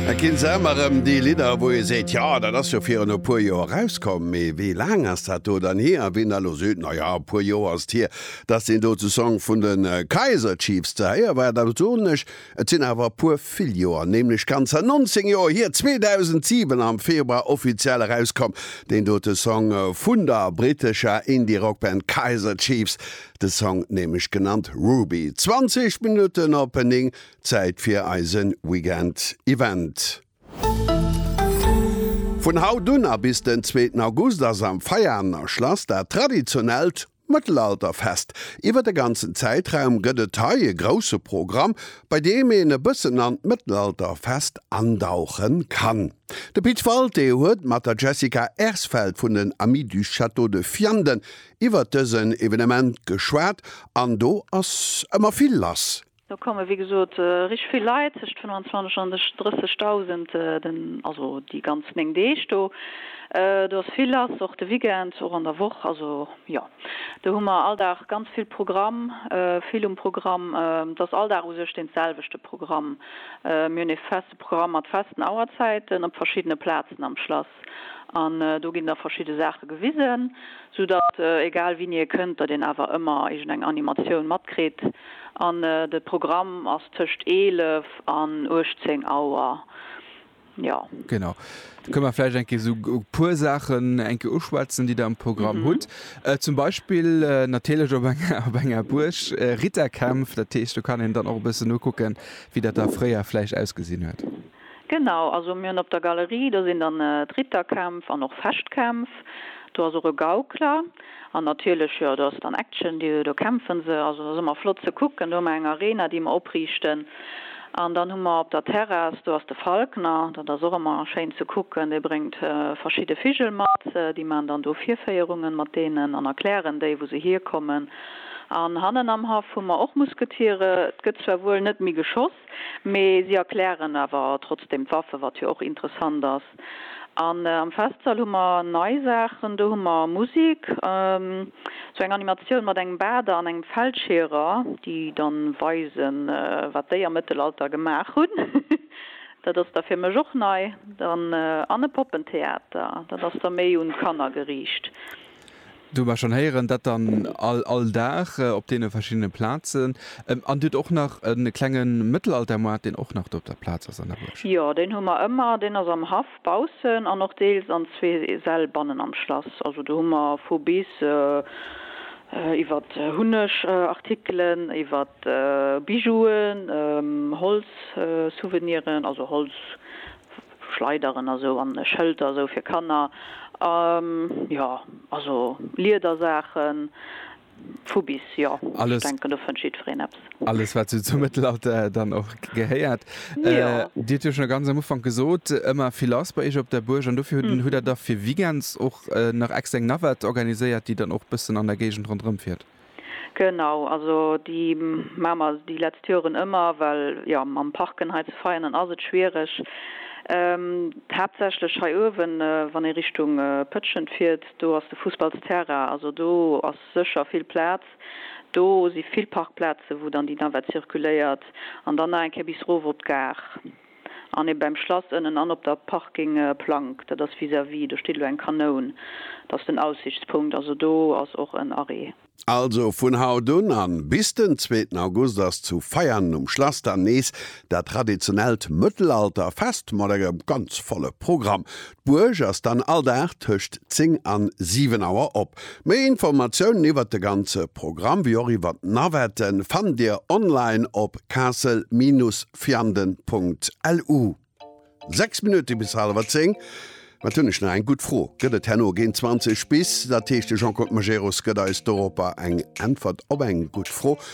Et ginn se ëmmer rëm, déi Lidder, wou ee seet, jo, dat ass jo virun e puer Joer erauskomm. Mee wéi laang ass dat do dann hier? A wien da elo seet, na ja, e puer Joer ass et hier, dass deen dote Song vun de Kaiser Chiefs ze héiere war, da soen ech, et sinn awer e puer vill Joer, nämlech ganzer 19 Joer hier, 2007 am Februar offiziell erauskomm, deen dote Song vun der brittescher Indie-Rockband Kaiser Chiefs, de Song nämlech genannt Ruby. 20 Minutten op 9 Zäit fir eise Weekend Event! Vun haut un a bis den zweeten August ass am Veianer Schlass dat traditionellt Mëttelalterfest. Iwwer de ganzen Zäitraum gëtt et hei e grousse Programm, bei deem een e bëssen an d'Mëttelalterfest andauche kann. De Pit Walté huet mat der Jessica Ersfeld vun den Amis du Château de Vianden iwwer dësen Evenement geschwat an do ass ëmmer vill lass. Do komme wéi gesot richteg vill Leit, tëscht 25 an 30.000, den, also déi ganz 9 Deeg do. Do ass vill lass, och de Weekend, och an der Woch. Also jo, do hu mer all Dag ganz vill Programm, vill um Programm. Et ass all Dag u sech dee selwechte Programm. Mir hunn ee feste Programm mat festen Auerzäiten op verschiddene Plazen am Schlass. Test an do ginn da verschidde Saache gewisen, sou datt egal wien hie kënnt, datt een awer ëmmer iergend eng Animatioun matkritt an de Programm ass tëscht 11 an 18 Auer, jo. Genau, da kënne mer vläicht eng Kéier sou e puer Saachen eng Kéier uschwätzen, déi der am Programm hutt. Zum Beispill natierlech op enger Buerg, Ritterkämpf, dat heescht do kann een dann och e bëssen nokucken, wéi dat da fréier vläicht ausgesinn huet. Genau, also mir hunn op der Galerie, do sinn dann d'Ritterkämpf an och Fechtkämpf, do ass och e Gaukler an natierlech, jo, do ass dann Action, do kämpfe se. Also dat ass ëmmer flott ze kucken. Do hu mer eng Arena, déi mer opriichten an dann hu mer op der Terrass, do ass de Falkner, dat ass och ëmmer schéin ze kucken, dee bréngt verschidde Vigel mat, déi maachen dann do Virféierungen mat deenen an erklären déi, wou se hierkommen. An hannen am Haff hu mer och Musketiere, et gëtt zwar wuel net méi geschoss, Mee si erklären awer trotzdem d'Waffe, wat jo och interessant ass. An am Festsall hu mer nei Saachen, do hu mer Musik, esou eng Animatioun mat engem Bader an engem Feldscheerer, déi dann weisen, wat déi am Mëttelalter gemaach hunn, dat ass da fir mech och nei, dann an e Poppentheater, dat ass da méi un d'Kanner geriicht. Do hu mer schonn héieren, dat dann all, all Dag op deene verschiddene Plazen. An Dir hutt och nach e klenge Mëttelaltermoart, deen och nach do op der Plaz ass an der Buerg? Jo, deen hu mer ëmmer. Deen ass am Haff baussen an och deels an zwee Säll bannen am Schlass. Also do hu mer vu bis, iwwert Hunnegartikelen, iwwert Bijouen, Holzsouveniren, also Holz, Schleideren a sou, an Schëlter a sou fir Kanner, a jo, also Liedersaachen, vu bis, jo. Ech denken, do fënnt jiddwereen eppes. Alles, wat sou zum Mëttelalter dann och gehéiert. Dir hutt jo schonn ganz am Ufank gesot, ëmmer vill lass bei iech op der Buerg, an dofir hutt Der da fir Weekends och nach extra eng Navette organiséiert, déi dann och e bëssen an der Géigend ronderëmfiert? Genau, also déi maache mer déi letzt Joren ëmmer, well jo mam Parken hei zu Veianen ass et schwiereg, haaptsächlech hei uewen, wann ee Richtung Pëtschent fiert, do ass de Fussballsterrain, also do ass sécher vill Plaz, do si vill Parkplaze wou dann déi Navette circuléiert an dann nach eng Kéier bis erof op d'Gare. an ee beim Schlass ënnen an op der Parking Plank, dat ass vis-à-vis, do steet elo eng Kanoun, dat ass den Aussichtspunkt, also do ass och en Arrêt. Also vun haut un an bis den zweeten August ass zu Veianen um Schlass dann nees dat traditionellt Mëttelalter-Fest mat engem ganz volle Programm. D'Buerg ass dann all Dag tëscht 10 an 7 Auer op. Méi Informatiounen iwwert de ganze Programm wéi och iwwert d'Navette fannt Dir online op castle-vianden.lu. 6 Minutte bis halewer 10. Mä et hunn ech nach eng gutt Fro, Gëtt et herno géint 20 bis, dat heescht de Jean-Claude Majerus gëtt eis doropper eng Äntwert op eng gutt Fro,